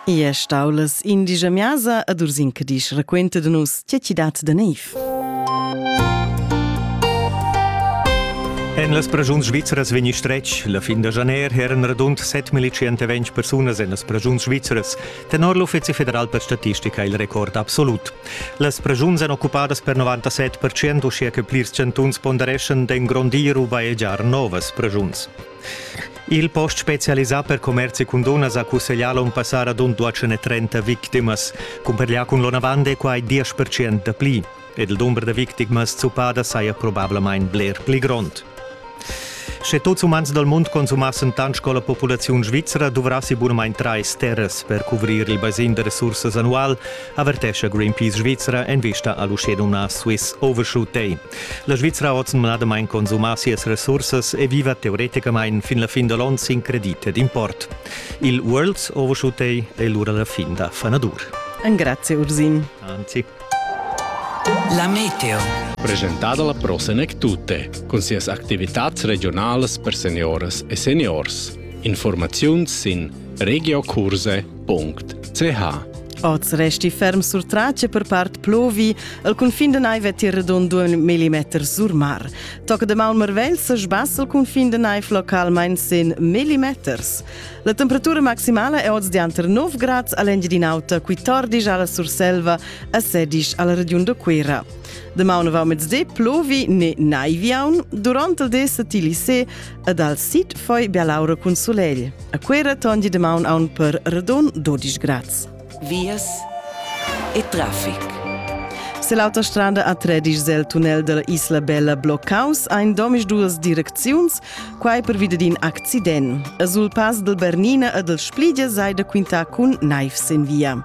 I è stau las indigia miasa ad Ursin che disch raquenta da nus tge chi dat da neiv. En las pragiuns svizras vegni stretg la fin da janer eran radund 7.120 persunas en las pragiuns svizras. Tenor l'Uffizi federal per statistica il record absolut. Las pragiuns èn occupadas per 97%, uschia che plirs chantuns pondereschan d'engrondir u bajegiar novas pragiuns. Il post specialisà per commerzi cun dunnas ha cusseglià l'onn passà radund 230 victimas. Cumparlià cun l'onavant è quai 10% da pli. Ed il dumber da victimas zuppadas saja probablamain bler pli grond. Sche tuts umans dal mund consumassen tant sco la populaziun svizra duvrassi bunamain trais terras per cuvrir il basin da resursas annual, avertescha Greenpeace Svizra en vista a l'uschenumnà Swiss Overshoot Day. La Svizra ha oz numnadamain consumà sias resursas e viva teoreticamain fin la fin da l'onn sin credit ed import. Il Worlds Overshooting è lura la fin da fanadur. Grazie Ursin. Anzi. La meteo. Presentada la Pro Senec Tutte, cun sias activitads regionalas per seniores e seniors. Informaziuns sin regiokurse.ch www.ch Oz resti ferm sur trace per part plovi. El confin de naiv è redon due millimeter sur mar. Toc de mal marvel se sbass el confin de naiv localmain sen millimeters. La temperatura maximala è oz dianter 9 grad all'Engiedinauta, qui tordish alla Surselva a sedish alla region de Quera. De maunavau mezde plovi ne naiviaun, durant el de se ti lise, Ed al sit foi Bialaura cun sulegl. A Cuera tondi de maun aun per redon 12 grads. Vias e traffic. Se l'autostrada a Tredisch zel tunnel della Isla Bella bloccaus ein domisch duas direcziuns, quai per vide d'in accident. A sul pass del Bernina e del Splidia sei da quintar cun naifs in via.